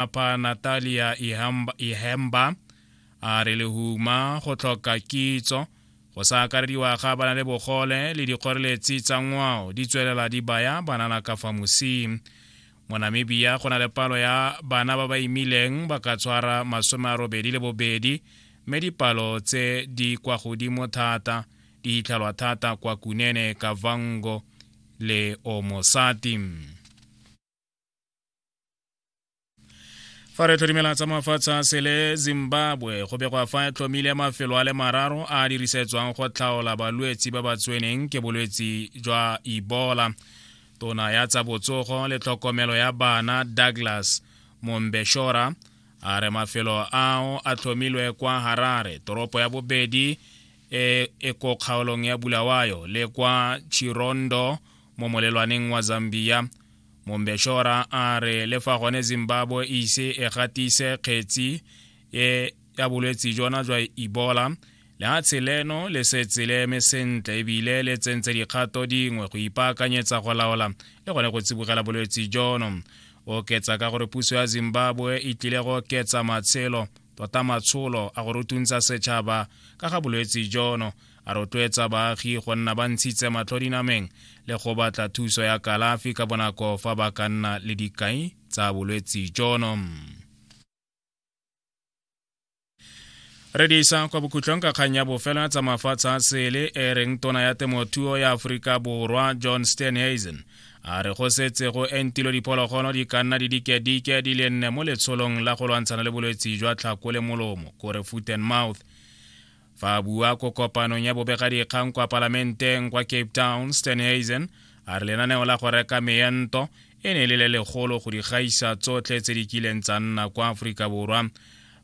Lefapha Natalia Ihemba a re lehuma go tlhoka kitso go sa akarediwa ga bana le bogole le dikgoreletsi tsa ngwao di tswelela di baya banana ka fa mosing mo namibia go na le palo ya bana ba ba imileng ba ka tshwara masome a robedi le bobedi mme dipalo tse di kwa godimo thata di itlhalwa thata kwa kunene kavango le omosati fa re tlhodimela tsa mafatshe a sele zimbabwe go begwa fa e tlhomile mafelo a le mararo a dirisetswang go tlhaola balwetsi ba ba tseneng ke bolwetsi jwa ebola tona ya tsa botsogo le tlhokomelo ya bana douglas mombeshora a re mafelo ao a tlhomilwe kwa harare toropo ya bobedi e, e ko kgaolong ya bulawayo le kwa chirondo mo molelwaneng wa zambia mombeshora a re le fa gone zimbabwe e ise e gatise kgetsi e ya bolwetsi jona jwa ebola lehatshe leno le setse le eme sentle ebile le tsentse dikgato dingwe go ipaakanyetsa go laola le gone go tsibogela bolwetsi jono oketsa ka gore puso ya zimbabwe e tlile go oketsa matshelo tota matsholo a go rutuntsa setšhaba ka ga bolwetse jono a rotloetsa baagi go nna ba ntshitse matlho dinameng le go batla thuso ya kalafi ka bonako fa ba ka nna le dikai tsa bolwetse jono re di isa kwa bokhutlong ka kgang ya bofelo ya tsa mafatshe a sele e reng tona ya temothuo ya aforika borwa john stenhazen a re go setse go entilo diphologolo di ka nna di dikedike di le nne mo letsholong la go lwantshana le bolwetse jwa tlhako le molomo kore foot and mouth fa a bua ko kopanong ya bobegadikgang kwa palamenteng kwa cape town stanhazen a re lenaneo la go reka meento e ne e le le legolo go di gaisa tsotlhe tse di kileng tsa nna kwa aforika borwa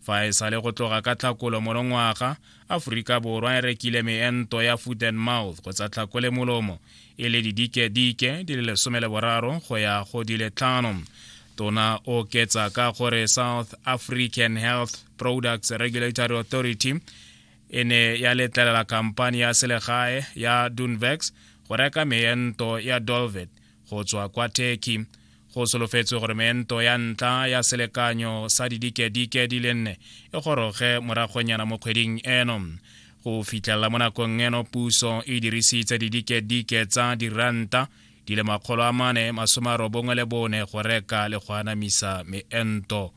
fa e sa le go tloga ka tlhakolo monongwaga aforika borwa e rekile meento ya foot and mouth kgotsa tlhako le molomo e le didike-dike di le lesome le boraro go ya go di le tlhano tona o ketsa ka gore south african health products regulatory authority e ne ya letlelela khamphani ya selegae ya dunvex go reka meento ya dolvet go tswa kwa turkey go solofetswe gore meento ya ntla ya selekanyo sa didikedike di le nne e goroge moragonyana mo kgweding eno go fitlhelela mo nakong eno puso e dirisitse didikedike tsa diranta di le makgolo a mane masome a robongwe le bone go reka le go anamisa meento